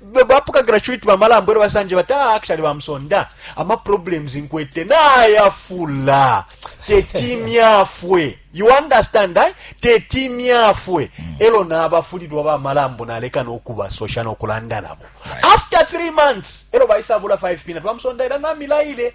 Bapokagila cuit ba malambo elyo basanje bati ah actually ba Msonda ama problems nkwete nayafula teti myafwe you understand eh? teti myafwe mm. elyo nabafulilwa ba malambo naleka nokubasosha nokulanda nabo after 3 months elyo baisabula 5 peanut ba Msonda ila namilaile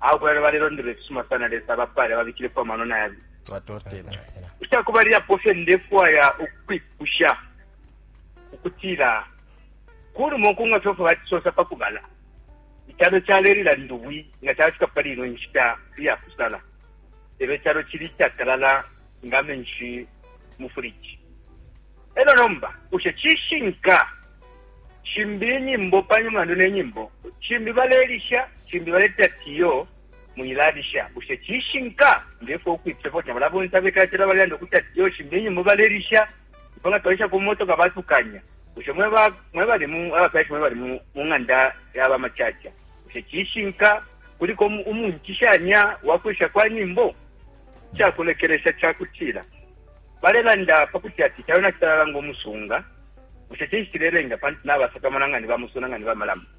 Awe kulala balelondolola ifisuma sana Lesa abapaale ababikilepo amano na yabi. Twatotela. Ica kubalilapo fye ndefwaya ukwipusha ukutila ku lumo ku nga fyofwe batisosa pa kubala icalo calelila ndubwi nga calafika pali ino nshita iya kusala lelo icalo cili icatalala nga menshi mu furiji E lyo nomba, bushe cishinka? Shimbi inyimbo pa mulandu ne nyimbo, shimbi balelisha, shimbi baleti ati, Iyo, mwilalisha. Bushe cishinka? Nge fwe ukwipifya fwe kuti nabala bonse abekala calo balelanda ukuti ati, Iyo, shimbi inyimbo balelisha. Ifwe nga twalisha ku motoka batukanya. Bushe mwe ba mwe bali mu abafyashi mwe bali mu mu ng'anda ya ba macaca, bushe cishinka kuliko umu- umuncishanya wa kulisha kwa nyimbo? Ica kulekelesha ca kutila, balelanda pa kuti ati icalo nacitalala ngo musunga. Bushe cinshi cilelenga? Pantu nabasakamana nga ni ba musuna, nga ni ba malamu.